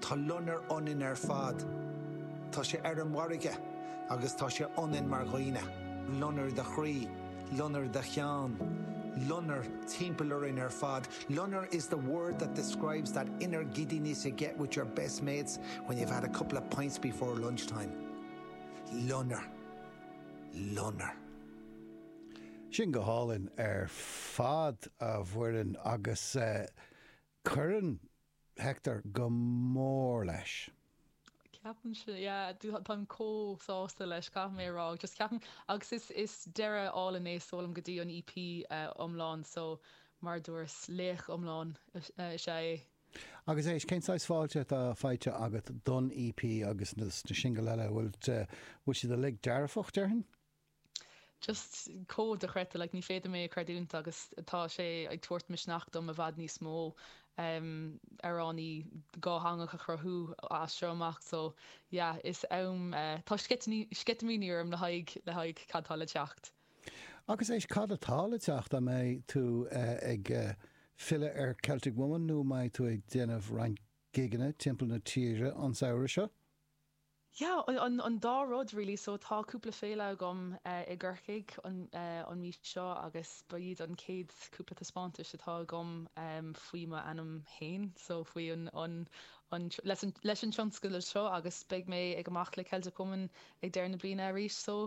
Tá loinnir ionainn ar fad. Tá sé ar an bhfarraige agus tá sé ionainn mar dhaoine, loinnir do chroí, loinnir do chinn, loinnir timpeall orainn ar fad. Loinnir is a word that describes that inner giddiness you get with your best mates when you've had a couple of pints before lunchtime. Loinnir. Loinnir. Sin go hálainn ar fad, a Mhuireann, agus Cuireann Hector go mór leis. Ceapaim sin, yeah, táim chomh sásta leis, caithfidh mé a rá, just ceapaim, agus is, is deireadh álainn é, sílim, go dtí an EP iomlán, so mar a dúras, laoch iomlán is ea é. Agus éist, cén saghas fáilte atá faighte agat don EP agus na singil eile, bhfuil, bhfuil siad uilig dearfach, déarfainn? just chomh dochreidte, like ní féidir mé a chreidiúint agus tá sé ag tabhairt misneach dom i bhfad níos mó em amhráin dhátheangacha a chruthú as seo amach so yeah is am eh, tá sceitimíní sceitimíní orm le haghaidh le haghaidh cad tá le teacht. Agus éist, cad atá le teacht, an mbeidh tú eh, ag eh, filleadh ar Celtic Woman nó an mbeidh tú ag déanamh roinnt gigeanna timpeall na tíre an samhradh seo? Yeah, an an dá rud really, so tá cúpla féile agam eh i gCorcaigh an eh an mhí seo agus ba iad an chéad cúpla taispeántais atá agam em faoi m'ainm fhéin so faoi an an an tr- leis an leis an tionscadal seo agus beidh mé ag amach le Celtic Woman ag deireadh na bliana arís so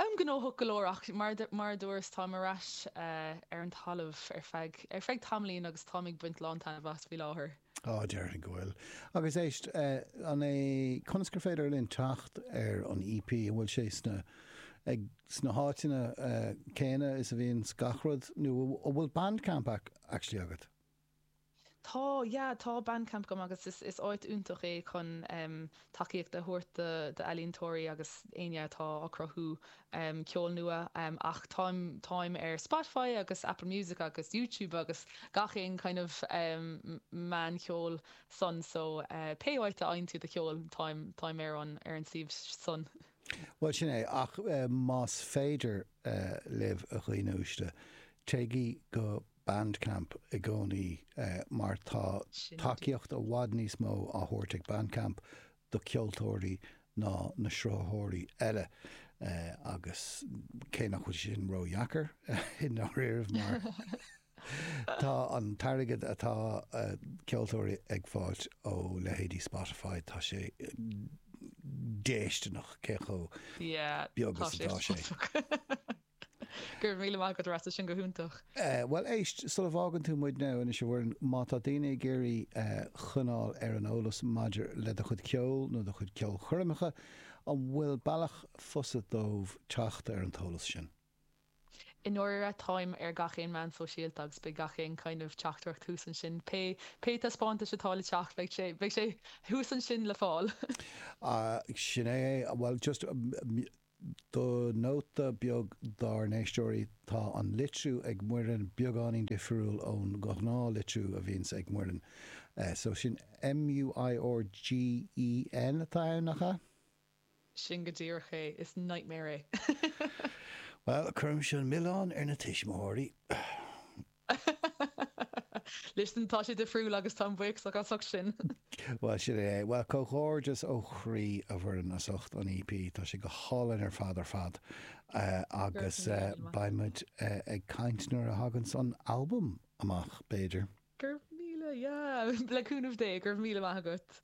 em gnóthach go leor ach mar du- mar a dúras táim ar ais eh ar an talamh ar feadh ar feadh tamaillín agus táim ag baint lán taitneamh as faoi láthair. Á, déarfainn go bhfuil. Agus éist, an é, conas gur féidir linn teacht ar an EP? An bhfuil sé sna, ag, sna háiteanna céanna is a bhíonn gach rud, nó an bhfuil Bandcamp actually agat? Tá, yeah, tá Bandcamp agam agus is, is áit iontach é chun, em, tacaíocht a thabhairt d'ealaíontóirí agus éinne atá ag cruthú ceol nua ach táim táim ar Spotify agus Apple Music agus YouTube agus gach aon kind of meán ceoil san so pé áit a fhaigheann tú do cheol táim táim ar an ar an suíomh san. Bhuel, sin é, ach más féidir libh, a dhaoine uaisle, téigí go. Bandcamp i gcónaí mar tá tacaíocht i bhfad níos mó á thabhairt ag Bandcamp do cheoltóirí ná na sruthaitheoirí eile agus cé nach bhfuil sin ródheacair i ndáiríre mar tá an t-airgead atá ceoltóirí ag fáilt ó leithéidí Spotify, tá sé déisteanach cé chomh beag is atá sé. Go raibh míle maith agat, a stór, tá sin go hiontach. Bhuel, éist, sula bhfágann tú muidne, anois, a Mhuireann, má tá daoine ag iarraidh coinneáil ar an eolas maidir le do chuid ceoil nó do chuid ceolchoirmeacha, an bhfuil bealach fusa dóibh teacht ar an t-eolas sin? I ndáiríre, táim ar gach aon meán sóisialta agus beidh gach aon kind of teachtaireacht thuas ansin, pé pé taispeántais atá le teacht, beidh sé, beidh sé thuas ansin le fáil. Sin é é. Bhuel, just. Do nóta beag dár n-éisteoirí, tá an litriú ag Muireann beagáinín difiriúil ón ghnáthlitriú a bhíonns ag Muireann. So sin M-u-i-r-g-h-e-n atá ann, nach ea? Sin go díreach é. Is nightmare é. Bhuel, cuirimis an milleán ar na tuismitheoirí. Listen, tá sé difriúil agus táim buíoch as ucht sin. Bhuel, sin é é. Bhuel, comhghairdeas ó chroí, a Mhuireann, as ucht an EP. Tá sé go hálainn ar fad ar fad. Agus beidh muid ag caint nuair a thaganns an albam amach, b'fhéidir. Go raibh míle, yeah, le cúnamh Dé, go raibh míle maith agat.